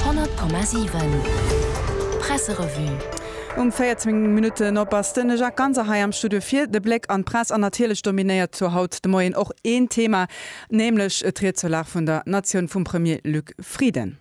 100,7 Presserevue Um 14 Minutten op ass de Jacques Ganser hei am Studio fir de Bléck an d'Press. An natierlech dominéiert zur haut de Moien och een Thema, nämlech d'Ried zur Lag vun der Natioun vum Premier Luc Frieden.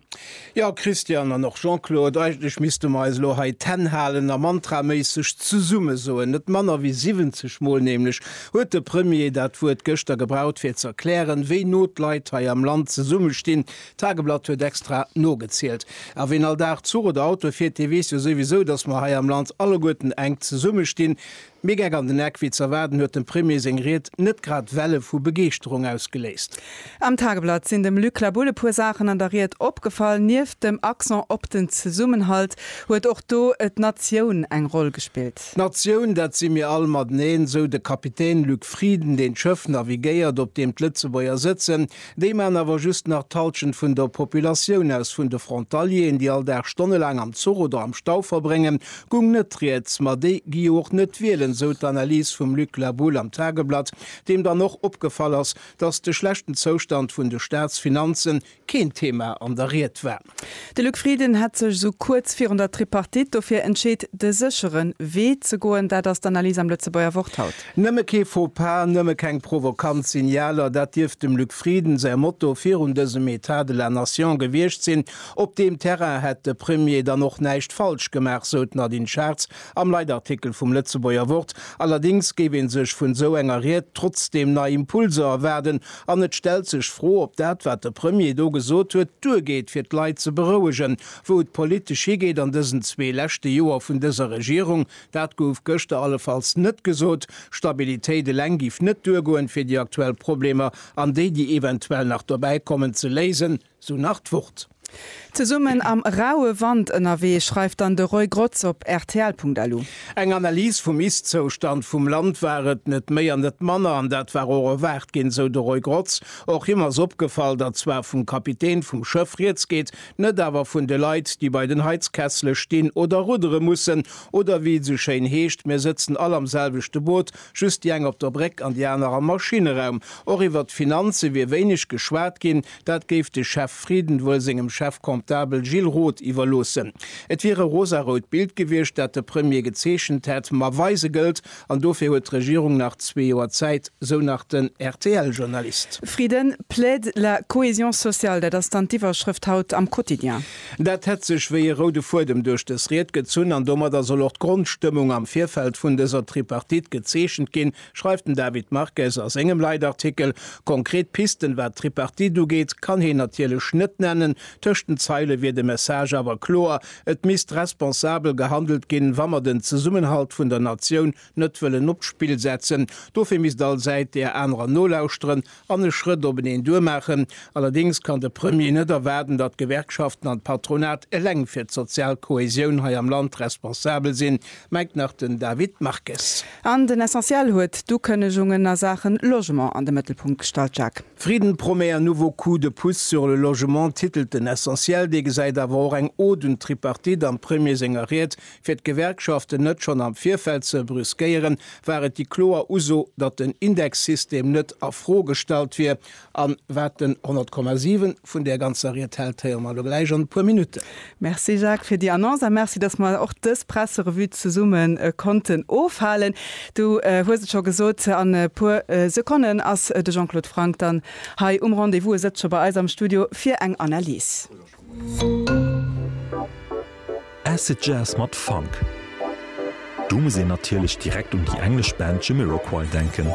Jo, Christian an och Jean-Claude, eigentlech misste mer eis elo hei d'Hänn halen a mantraméisseg zesumme soen, net manner wéi 70 Mol nämlech, huet de Premier dat Wuert gëschter gebraucht fir ze erklären, wéi no d'Leit hei am Land zesummestinn. D'Tageblatt huet extra nogezielt. A ween all Dag Zuch oder Auto fiert, dee weess jo souwisou, datt mer hei am Land alleguerten enk zesummestinn. Méi Geck an den Eck wéi z'erwaarden huet dem Premier seng Ried net grad Welle vu Begeeschterung ausgeléist. Am Tageblatt sinn dem Luc Labulle e puer Saachen an der Ried opgefall. Nieft dem Accent op den Zesummenhalt huet och do d'Natioun eng Roll gespillt. D'Natioun, dat si mir all mateneen, sou de Kapitän Luc Frieden, deen d'Schëff navigéiert, op deem d'Lëtzebuerger sëtzen. Déi maachen awer just nach d'Halschent vun der Populatioun aus. Vun de Frontalieren, déi all Dag stonnelaang am Zuch oder am Stau verbréngen, gung net rieds. Ma déi gi jo och net wielen, sou d'Analys vum Luc Labulle am Tageblatt, deem dann och opgefall ass, datt de schlechten Zoustand vun de Staatsfinanze keen Thema an der Ried war. De Luc Frieden hätt sech esou kuerz virun der Tripartite dofir entscheet, de séchere Wee ze goen. Dat ass d'Analys am Lëtzebuerger Wort haut. Nëmme kee Faux-pas, nëmme keng provokant Signaler, dat dierft dem Luc Frieden säi Motto virun dësem Etat de la Nation gewiescht sinn. Op deem Terrain hätt de Premier dann och näischt falsch gemaach, sou d'Nadine Schartz Am Leitartikel vum Lëtzebuerger Wort allerdéngs géif ee sech vun esou enger Ried trotzdeem nei Impulser erwaarden an et stellt sech d'Fro, ob dat, wat de Premier do gesot huet, duergeet, fir d'Leit ze berouegen, wou et politesch higeet an dësen zwee leschte Joer vun dëser Regierung. Dat gouf gëschter allefalls net gesot. Stabilitéit eleng géif net duergoen, fir déi aktuell Problemer an déi, déi eventuell nach dobäikommen, ze léisen. Sou nach d'Wort. Zesummen am raue Wand ënnerwee, schreift dann de Roy Grotz op rtl.lu. Eng Analys vum Ist-Zoustand vum Land war et, net méi an net manner, an dat war och erwaart ginn, sou de Roy Grotz. Och him ass opgefall, datt zwar vum Kapitän vum Schëff rieds geet, net awer vun de Leit, déi bei den Heizkessele stinn oder ruddere mussen. Oder wéi et esou schéin heescht, Mir sëtzen all am selwechte Boot, just déi eng op der Bréck an déi aner am Maschinneraum. Och iwwert d'Finanze wier wéineg geschwat ginn, Dat géif de Chef Frieden wuel sengem Chef Comptable Gilles Roth iwwerloossen. Et wier e rosarout Bild gewiescht, dat de Premier gezeechent hätt, ma weise gëllt, an dofir huet d'Regierung nach zwee Joer Zäit, sou nach den RTL-Journalist. Frieden plaide la cohésion sociale, dat ass dann d'Iwwerschrëft haut am Quotidien. Dat hätt sech wéi e roude Fuedem duerch dës Ried gezunn, an domadder soll och d'Grondstëmmung am Virfeld vun dëser Tripartite gezeechent ginn, Schreift den David Marques a sengem Leitartikel. Konkret Pisten, wat d'Tripartite ugeet, kann hien natierlech net nennen. Tëscht den Zeile wier de Message awer kloer, Et misst responsabel gehandelt ginn, wa mer den Zesummenhalt vun der Natioun net wëllen op d'Spill setzen. Dofir misst all Säit där anerer nolauschteren an e Schrëtt op en een duer maachen. Allerdéngs kann de Premier net erwaarden, datt d'Gewerkschaften an d'Patronat eleng fir d'sozial Kohäsioun hei am Land responsabel sinn, mengt nach den David Marques. An den Essentiel huet d'Ukënnegungen a Saachen Logement an de Mëttelpunkt gestallt, Jacques. Frieden promet un nouveau coup de pouce sur le logement, titelt den Essentiel. Dee gesäit awer och eng Ode un d'Tripartite am Premier senger Ried, Fir d'Gewerkschaften net schonn am Virfeld ze brüskéieren, war et déi kloer Uso, datt den Indexsystem net a Fro gestallt wier. An wat den 100,7 vun där ganzer Ried hält, héiere mer elo gläich an e puer Minutten. Merci Jacques fir déi Annonce a merci, datt mer och dës Presserevue zesumme konnten ofhalen. Du hues et scho gesot, an e puer Sekonnen ass de Jean-Claude Franck dann hei um Rendez-vous. E sëtzt scho bei eis am Studio fir eng Analys. Acid Jazz mat Funk. Do muss een natierlech direkt un déi englesch Band Jamiroquai denken.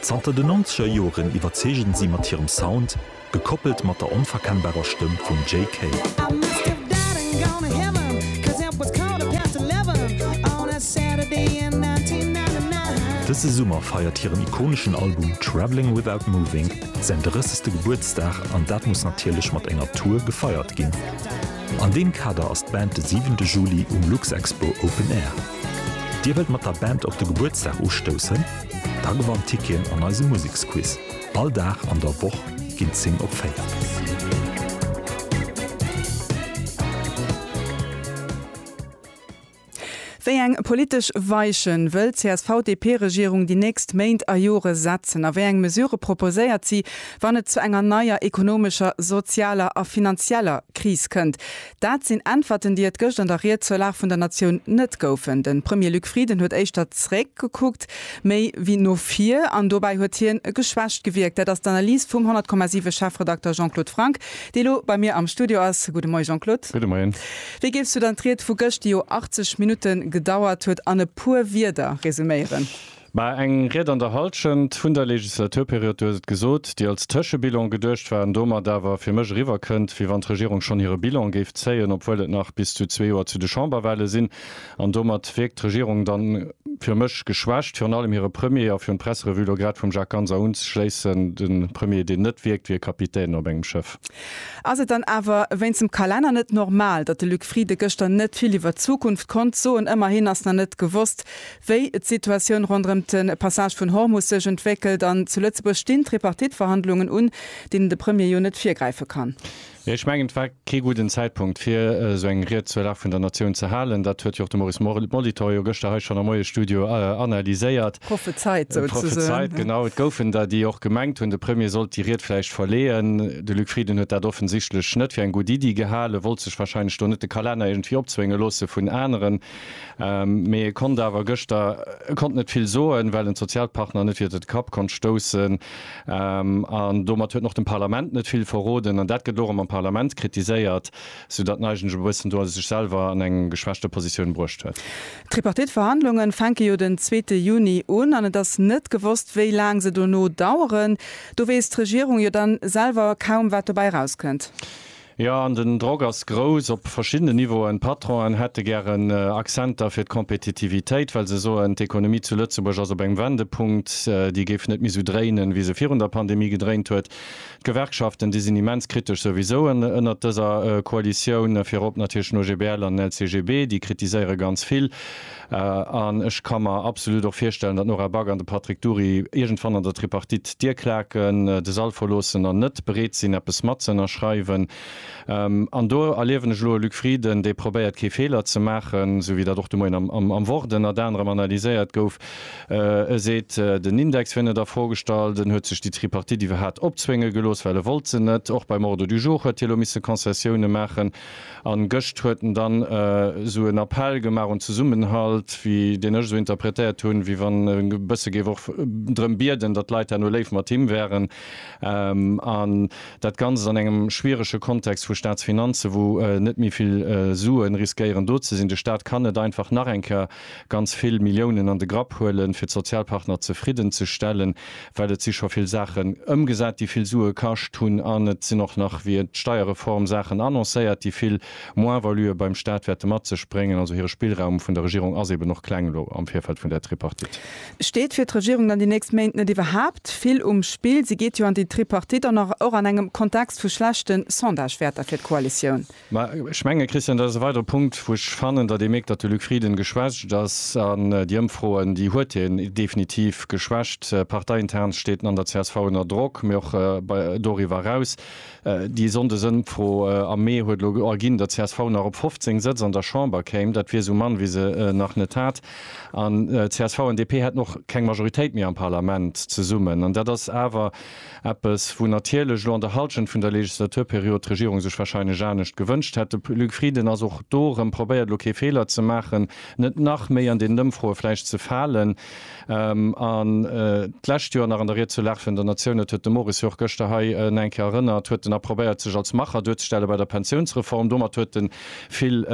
Zanter den nonzeger Joren iwwerzeegen si mat hirem Sound, gekoppelt mat der onverkennbarer Stëmm vum Jay Kay. Dëse Summer feiert hiren ikoneschen Album Travelling Without Moving Säin 30. Gebuertsdag an dat muss natierlech mat enger Tour gefeiert ginn. An deem Kader ass d'Band de 7 de Juli um Luxexpo Open Air. Dir wëllt mat der Band op de Gebuertsdag ustoussen? Da gewannt Ticketen an eisem Museksquiz. All Dag an der Woch ginn d'Zing op 4. Wéi eng politesch Weichen wëll d'CSV-DP-Regierung déi nächst Méint a Jore setzen a wéi eng Mesurë proposéiert si, wann et zu enger neier ekonomescher, sozialer a finanzieller Kris kënnt? Dat sinn Äntwerten, déi et gëscht an der Ried zur Lag vun der Natioun net goufen. De Premier Luc Frieden huet éischter zeréck gekuckt, méi wéi no vir an dobäi huet hien geschwächt gewierkt. Dat ass d'Analys vum 100,7 Chefredakter Jean-Claude Franck, dee lo bei mir am Studio ass. Gudde Moie Jean-Claude. Gudde Moien. Wéi géifs du dann d'Ried vu gëscht, déi jo 80 Minutte gedauert huet, an e puer Wierder resuméieren? Mä eng Ried an der Hallschent vun der Legislaturperiod, du hues et gesot, déi als Tëschebilan geduecht war an domat awer fir mech eriwwerkënnt, wéi wann d'Regierung schonn hire Bilan géif zéien, obwuel et nach bis zu zwee Joer zu de Chamberwahle sinn. An domat wierkt d'Regierung dann fir mech geschwächt. Virun allem hire Premier, a fir un d'Presserevue elo grad vum Jacques Ganser unzeschléissen, de Premier, deen net wierkt wéi e Kapitän op engem Schëff. Ass et dann awer wéinst dem Kalenner net normal, datt de Luc Frieden gëschter net vill iwwert d'Zukunft konnt soen? Ëmmerhin ass nach net gewosst, wéi d'Situatioun ronderëm de Passage vun Hormus sech entwéckelt. An zu Lëtzebuerg stinn d'Tripartite-Verhandlungen un, deenen de Premier jo net virgräife kann. Ech mengen, et war kee gudden Zäitpunkt, fir esou eng Ried zur Lag vun der Natioun ze halen. Dat huet jo och de Maurice Molitor jo gëschter hei schonn am Moiesstudio analyséiert, Prophezeit souzesöen. Genau, et goufen der, déi och gemengt hunn, de Premier sollt déi Ried vläicht verleeën. De Luc Frieden huet dat offensichtlech net fir eng gutt Iddi gehalen, wollt sech warscheinlech do net de Kalenner iergendwéi opzwénge loosse vun aneren, mee e konnt awer gëschter, e konnt net vill soen, well en d'Sozialpartner net iwwert e Kapp konnt stoussen. An domat huet en och dem Parlament net vill verroden. An dat gëtt elo erëm am Parlament kritiséiert, soudatt en eigentlech e bëssen do sech selwer an eng geschwächte Positioun bruecht huet. D'Tripartite-Verhandlunge fänke jo den zweete Juni un an et ass net gewosst, wéi laang se dono daueren. Do weess d'Regierung jo dann selwer kaum, wat dobäi erauskënnt. Jo, an den Drock ass grouss op verschiddenen Niveauen. D'Patronen hätte gären Accenter fir d'Kompetitivitéit, well se soen, d'Ekonomie zu Lëtzebuerg ass op engem Wendepunkt, déi géif net méi esou dréinen, wéi se virun der Pandemie gedréint huet. D'Gewerkschaften, déi sinn immens kritesch souwisou ënnert dëser Koalitioun, virop natierlech den OGBL an den LCGB, déi kritiséiere ganz vill. An ech ka mer absolut och virstellen, datt d'Nora Back an de Patrick Dury iergendwann an der Tripartite d'Dier klaken, de Sall verloossen an net bereet sinn, eppes matzënnerschreiwen. An do erliewen ech elo e Luc Frieden, dee probéiert, kee Feeler ze maachen, esou wéi dat och de Moien am Wort ënnert anerem analyséiert gouf. E seet, den Index wier net a Fro gestallt. En huet sech déi Tripartite iwwerhat opzwénge gelooss, well e wollt se net. Och beim Ordre du jour huet hie elo misse Concessioune maachen. An gëscht huet en dann esou en Appell gemaach un Zesummenhalt, wéi deen ech esou interpretéiert hunn, wéi wann e bësse géif och drëm bieden, datt d'Leit herno léif mat him wären. An dat Ganzt an engem schwierege Kontext vu Staatsfinanzen, wou net méi vill Suen riskéieren do ze sinn. De Staat kann net einfach nach eng Kéier ganz vill Milliounen an de Grapp huelen, fir d'Sozialpartner zefridden ze stellen, well et si scho vill Saachen ëmgesat, déi vill Sue kascht hunn, an et sinn och nach via d'Steierreform Saachen annoncéiert, déi vill Moins-valuë beim Stat wäerte mat sech bréngen. Also hire Spillraum vun der Regierung ass eben och kleng elo am Virfeld vun där Tripartite. Steet fir d'Regierung dann déi nächst Méint net iwwerhaapt vill um Spill? Si geet jo an déi Tripartite an och an engem Kontext vu schlechten Sondagewäerter fir d'Koalitioun. Mä ech menge, Christian, dat ass e weidere Punkt, wou ech fannen, datt ee mierkt, datt de Luc Frieden geschwächt ass. An déi Ëmfroen, déi huet hien definitiv geschwächt. Parteiintern steet en an der csv ënner Drock, mee och bei doriwwer eraus. Déi Sonndesëmfro am Mee huet elo erginn, datt csv nach op 15 Sëtz an der Chamber kéim. Dat wier esou mann, wéi se nach net hat. An csv an DP hätten och keng Majoritéit méi am Parlament zesummen. An dat ass awer Eppes, wou natierlech elo an der Halschent vun der Legislaturperiod d'Regierung sech wahrscheinlech anescht gewënscht hätt. De Luc Frieden ass och do erëm, probéiert elo kee Feeler ze maachen, net nach méi an deenen Ëmfroe vläicht ze falen. An d'lescht Joer nach an der Ried zur Lag vun der Natioun, dat huet de Moris jo och gëschter hei nach eng Kéier erënnert, huet en nach probéiert sech als Macher duerzestelle bei der Pensiounsreform. Domat huet e vill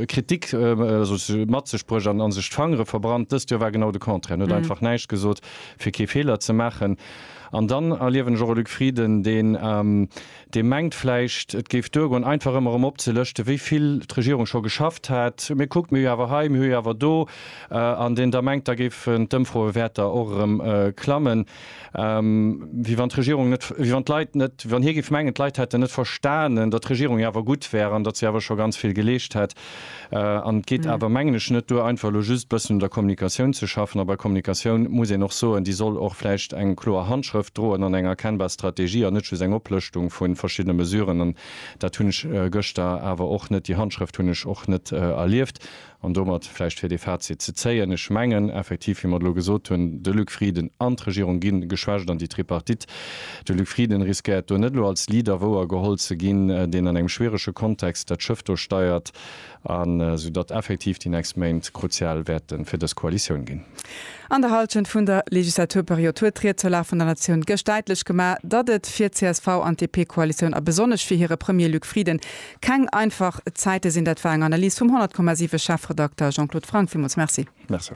Kritik mat sech bruecht an sech d'Fangere verbrannt. Dëst Joer war genau de Contraire, en huet einfach näischt gesot. fir kee Feeler ze maachen. An dann erliewen ech och e Luc Frieden, deen, dee mengt vläicht, et géif duergoen, einfach ëmmer erëm opzelëschte wéi vill d'Regierung scho geschafft hätt, mee kuckt, mir hu jo awer hei, mir hu jo awer do, an deen da mengt, da géifen d'Ëmfroewäerter och erëm klammen, wéi wann d'Regierung net, wéi wann d'Leit net, wéi wann hie géif mengen, d'Leit hätten net verstanen, datt d'Regierung jo awer gutt wär an datt si awer scho ganz vill geleescht hätt. An et geet awer, mengen ech, net duer, einfach elo just e bëssen un der Kommunikatioun ze schaffen. A bei Kommunikatioun muss een och soen, déi soll och vläicht eng kloer Handschrëft droen an eng erkennbar Strategie an net just eng Oplëschtung vu verschiddene Mesuren. An dat hunn ech gëschter awer och net, déi Handschrëft hunn ech och net erlieft. An domat vläicht, fir dee Fazit ze zéien, Ech mengen effektiv, wéi mer et elo gesot hunn, de Luc Frieden an d'Regierung gi geschwächt an déi Tripartite De Luc Frieden riskéiert do net elo als Leader wouer geholl ze ginn, deen an engem schwierege Kontext dat Schëff do steiert, an esou datt effektiv déi nächst Méint kruzial wäerte fir dës Koalitioun ginn. An der Hallschent vun der Legislaturperiod huet d'Ried zur Lag vun der Natioun gëscht däitlech gemaach, datt et fir csv an DP-Koalitioun a besonnesch fir hire Premier Luc Frieden keng einfach Zäite sinn. Dat war eng Analys vum 100,7 Chefredakter Jean-Claude Franck. Villmools Merci. Merci.